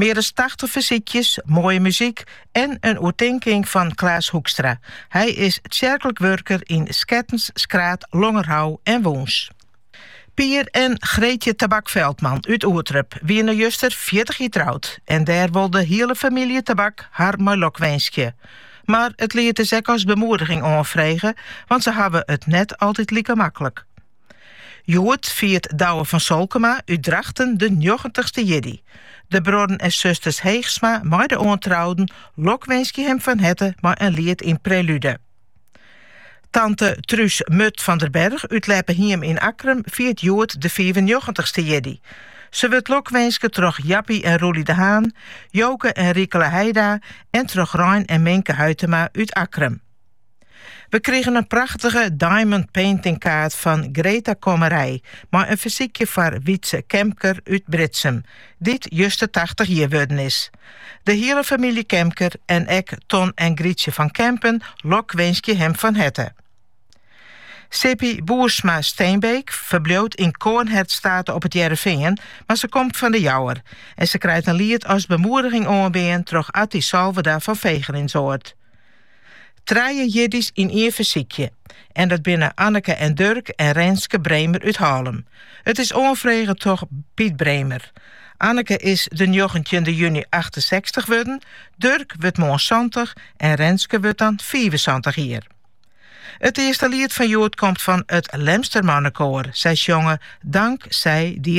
Mear as tachtich fersykjes, moaie muzyk en in oertinking fan Klaas Hoekstra. Hy is tsjerklik wurker yn Skettens, Skraard, Longerhou en Wûns. Pier en Greetje Tabak-Veldman út Oerterp wiene juster fjirtich jier troud en dêr wol de hiele famylje Tabak har mei lok winskje. Mar it liet is ek as bemoediging oanfrege, want se hawwe it net altyd like maklik. Hjoed fiert Douwe van Solkema út Drachten de njoggentichste jierdei. De bruorren en susters Heegsma mei de oantrouden lokwinskje him fan herte mei in liet yn Prelúde. Tante Truus Murt van der Berg út Leppehiem yn Akkrum fiert hjoed de fiifennjoggentichste jierdei. Se wurdt lokwinske troch Jappie en Roelie de Haan, Joke en Rikele Heida en troch Rein en Minke Huitema út Akkrum. We krigen in prachtige diamond painting kaart fan Greta Kommerij mei in fersykje foar Wietse Kemker út Britsum, dy't juster tachtich jier wurden is. De hiele famylje Kemker en ek Ton en Grietje van Kempen lokwinskje him fan herte. Sippie Boersma-Steenbeek ferbliuwt yn Coornhert State op It Hearrenfean, mar se komt fan De Jouwer en se krijt in liet as bemoediging oanbean troch Atty Salverda fan Fegelinsoard. Trije jierdeis yn ien fersykje. En dat binne Anneke en Durk en Renske Bremer út Hallum. It is oanfrege troch Piet Bremer. Anneke is de njoggentjinde juny achtensechstich wurden, Durk wurdt moarn santich en Renske wurdt dan fiifensantich jier. It earste liet fan hjoed komt fan it Lemster Mannekoar. Sy sjonge Dank zij die